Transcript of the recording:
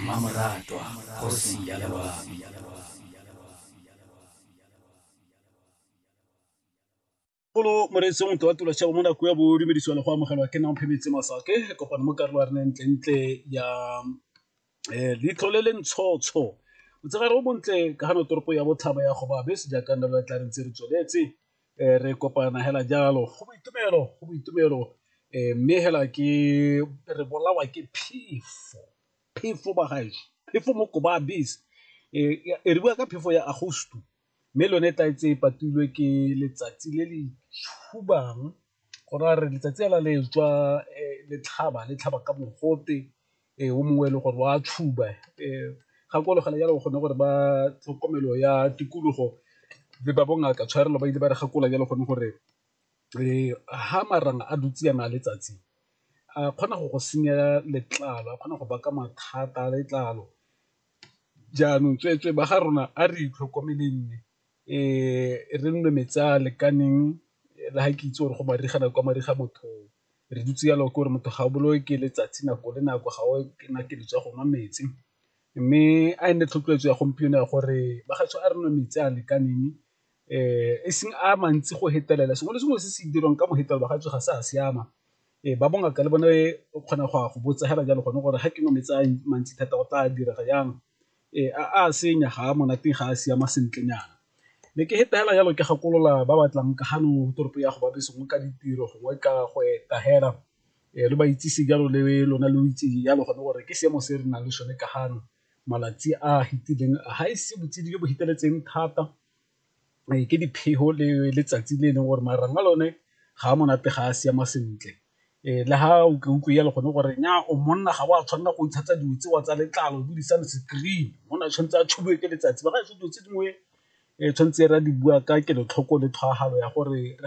Mmamoratwa kgosi ya loabi. Bolo moreetsi motho wa tula shabo mo nako ya bo dumedisiwa le go amogelwa ke nang phemetse masake kopano mo karolo ya re ntle ntle ya eh, leitlho le le ntshotsho motshegare o montle ka gano toropo ya botlhaba ya gobabe sejaaka nna lo tla re ntse re tsweletse eh, re kopana hela jalo go boitumelo go boitumelo eh, mme hela ke re bolawa ke phefo phefo bagaetsho phefo mo koba abis eh, e re bua ka phefo ya agosto mme lone tla etse e patilwe ke letsatsi le le tshubang go ra re letsatsi la le tswa eh, letlhaba letlhaba ka mogote Ee, o mongwe e le gore wa tshuba gakologela jalo o kgone gore ba tlhokomelo ya tikologo le ba bongaka tshwarelo ba ile ba re gakola jalo gone gore ha marang a dutse yana a letsatsi a kgona go go senya letlalo, a kgona go baka mathata a letlalo jaanong tsweetswee ba ga rona a re itlhokomeleng. e re nne metsi a a lekaneng le ga ke itse gore go mariga nako ya mariga motho re dutse jalo ke gore motho ga o bolawe ke letsatsi nako le nako ga o kena ke ditswa go nwa metsi. Mme a e nne tlhotlheletso ya gompieno ya gore bagaetsho a re nwe metsi a a lekaneng e seng a mantsi go fetelela sengwe le sengwe se se dirwang ka go fetelela bagaetsho ga se a siama. Ba bongaka le bone o kgona go a go botsa fela jalo gone gore ga ke nwa metsi a mantsi thata go tla dira jang. Ee, a senya ga a monate ga a siama sentlenyana, ne ke feta fela jalo ke gakolola ba ba tlang ka gano toropo ya go ba beseng ka ditiro gongwe ka go eta fela re ba itsise jalo le lona lo itse jalo gone gore ke seemo se re nang le sone ka gano malatsi a fitileng ga ise botsididi jo bo feteletseng thata. ke dipheho le letsatsi le e leng gore marang a lone ga a monate ga a siama sentle, le ga o ke utlwe jalo gone gore nyaa o monna ga o a tshwanela go ntshetsa dilo tseo tsa letlalo o dirisa le screen, monna o tshwanetse a tshubiwe ke letsatsi ba ga se dilo tse dingwe tshwanetse re a di bua ka kelotlhoko le tshwaragano ya gore.